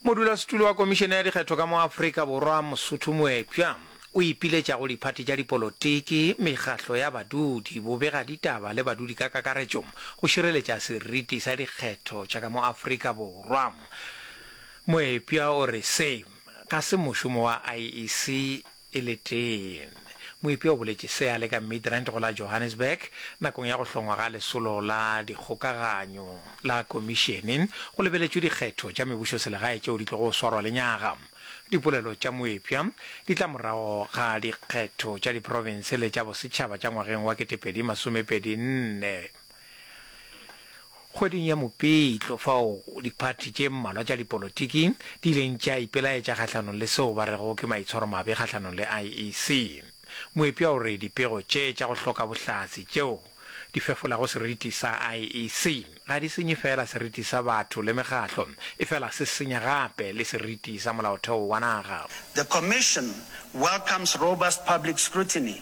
Modulasetulo wa Komišene ya Dikgetho ka mo Afrika Borwa Mosotho Moepša o ipiletša go diphathi tša dipolotiki, mekgahlo ya badudi, bobegaditaba le badudi ka kakaretšo go šireletša seriti sa dikgetho tša ka mo Afrika Borwa. Moepša o re se ga se mošomo wa IEC e le tee. Moepi o boletše se a le ka Midrand go la Johannesburg nakong ya go hlongwa ga Lesolo la Dikgokaganyo la Komišene go lebeletšwe dikgetho tša mebušoselegae tšeo di tlogo swarwa lenyaga. Dipolelo tša moepša di tla morago ga dikgetho tša diprofense le tša bosetšhaba tša ngwageng wa 2024. Kgweding ya Mopitlo fao diphathi tše mmalwa tša dipolotiki di ileng tša ipelaetša kgahlanong le seo ba rego ke maitshwaromabe kgahlanong le IEC, moepša o re dipego tše tša go hloka bohlatse tšeo di fefolago seriti sa IEC ga di senye feela seriti sa batho le mekgahlo efela se senya gape le seriti sa molaotheo wa naga. The Commission welcomes robust public scrutiny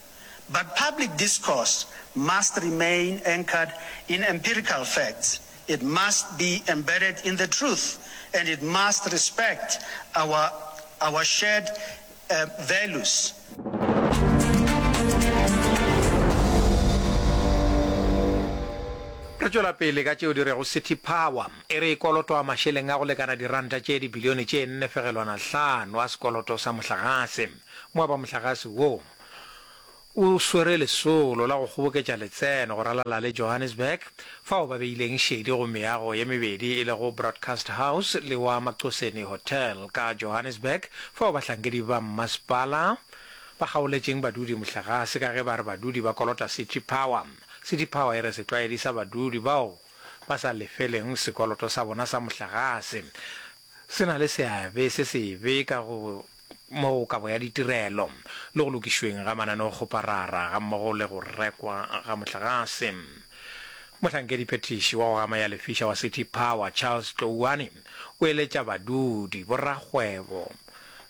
But public discourse must remain anchored in empirical facts, it must be embedded in the truth and it must respect our our shared values. Re tšwela pele ka tšeo di rego City Power e re e kolotwa mašeleng a go lekana diranta tše dibilione tše nne fegelwana hlano a sekoloto sa mohlagase. Moaba mohlagase woo o swere lesolo la go kgoboketša letseno go ralala le Johannesburg, fao ba beileng šedi go meago ye mebedi e lego Broadcast House le wa Macoseni Hotel ka Johannesburg, fao bahlankedi ba mmasepala ba kgaoletšeng badudi mohlagase ka ge ba re badudi ba kolota City Power. City Power e re setlwaedi sa badudi bao ba sa lefeleng sekoloto sa bona sa mohlagase se na le seabe se sebe ka go mo go kabo ya ditirelo le go lokišweng ga mananeokgoparara gammogo le go rekwa ga motlagase. Mohlankedi-phethiši wa go gama ya lefiša wa City Power, Charles Tlouane, o eletša badudi, borakgwebo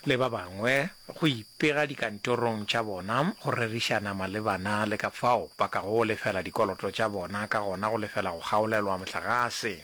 le ba bangwe go ipega dikantorong tša bona go rerišana malebana le ka fao ba kago lefela dikoloto tša bona ka gona go lefela go kgaolelwa motlagase.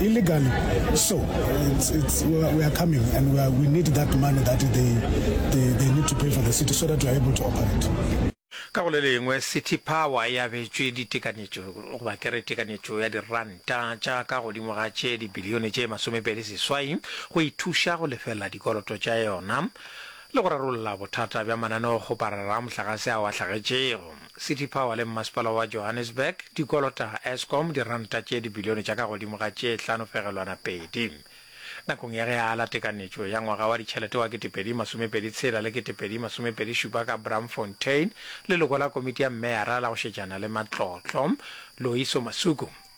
illegally. So it's, it's, we, are, we are coming and we, are, we need that money that they, they, they need to pay for the city so that we are able to operate. ka go le lengwe city power e abetšwe ditekanetšo goba ke re tekanetšo ya diranta tša ka godimo ga tše dibilione tše masomepedi seswai go ithuša go lefelela dikoloto tša yona le go rarolla bothata bja mananeokgoparara a mohlagase ao a hlagetšego City Power le Mmasepala wa Johannesburg di kolota Eskom diranta tše dibilione tša ka godimo ga tše hlano fegelwana pedi. Nakong ya ge a ala tekanetšo ya ngwaga wa ditšhelete wa ketepedi masomepedi tshela le ketepedi masomepedi šupa ka Braamfontein, leloko la komiti ya meyara la go šetšana le matlotlo, Loyiso Masuku,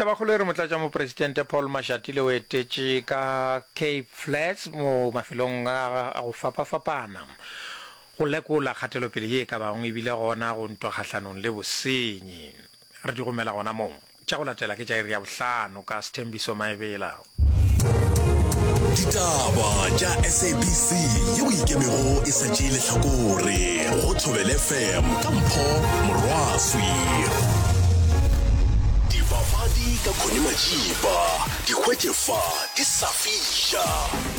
Tabakgolo e re Motlatšamopresidente Paul Mashatile o etetše ka Cape Flats mo mafelong a go fapafapana go lekola kgatelopele ye e ka bago ebile gona go ntwa kgahlanong le bosenyi. Re di romela gona moo. Tša go latela ke tša iri ya bohlano ka Sthembiso Maebela. ditaba tša sabc ye o ikemego e sa tšee lehlakore go thobele fm ka mpho morwaswi dibapadi ka kgone majiba dikgwetše fa di sa fiša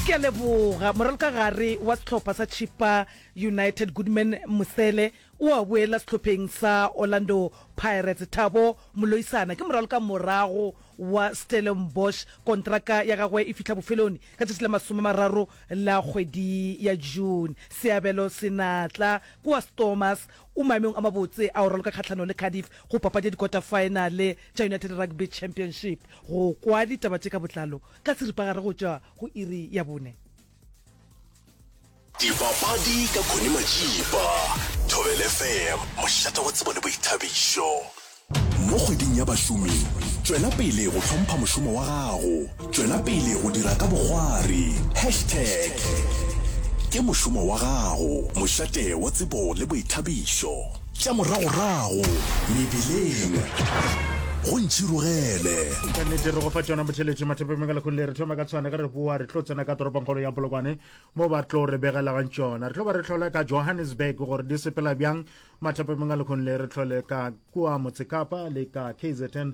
ke a leboga moraloka gare wa sehlopha sa chipa united goodman mosele o a boela sehlopheng sa orlando pirates thabo moloisana ke moraloka morago wa Stellenbosch kontraka ya gagwe e fihla bofeloni ka tšatši la masome mararo la kgwedi ya June. Seabelo Senatla kua Stormers o maemong a mabotse a go raloka kgahlanong le Cardiff go papadi ya dikota-faenale tša United Rugby Championship. Go kwa ditaba tše ka botlalo ka seripagare go tšwa go iri ya bone. dipapadi ka khone majipa thobel fm mošata wa tsebo le boithabišo mo kgweding ya bašomi tšwela pele go hlompha mošomo wa gago tšwela pele go dira ka bogwari hashtag ke mošomo wa gago mošate wa tsebo le boithabišo Tša moragorago mebileng go ntšhirogele. Ka nnete re go fa tšona botheletše mathapeng me ka lekgong le re thoma ka tshwana ka re boa re tlo tsena ka toropongkgolo ya polokwane mo ba tlo re begelagang tšona re tlo ba re tlhola ka johannesburg gore di sepela bjang mathapeng me ka lekgong le re tlhole ka kua motsekapa le ka kzn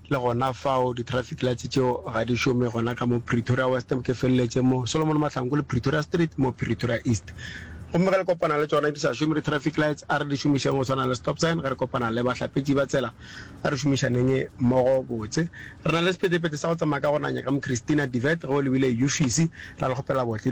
Le gona fao, di-traffic lights tšeo ga di šome gona ka mo Pretoria West, ke feleletše mo Solomon Mahlangu le Pretoria Street mo Pretoria East. Gomme ge le kopana le tšona di sa šome di-traffic lights, a re di šomišeng go swana le stop sign ge re kopana le bahlapetši ba tsela. A re šomišaneng mmogo botse. Re na le sepetepete sa go tsamaya ka gonanya ka mo Christina Divert ge o lebile Yufisi. Ra le kgopela botle.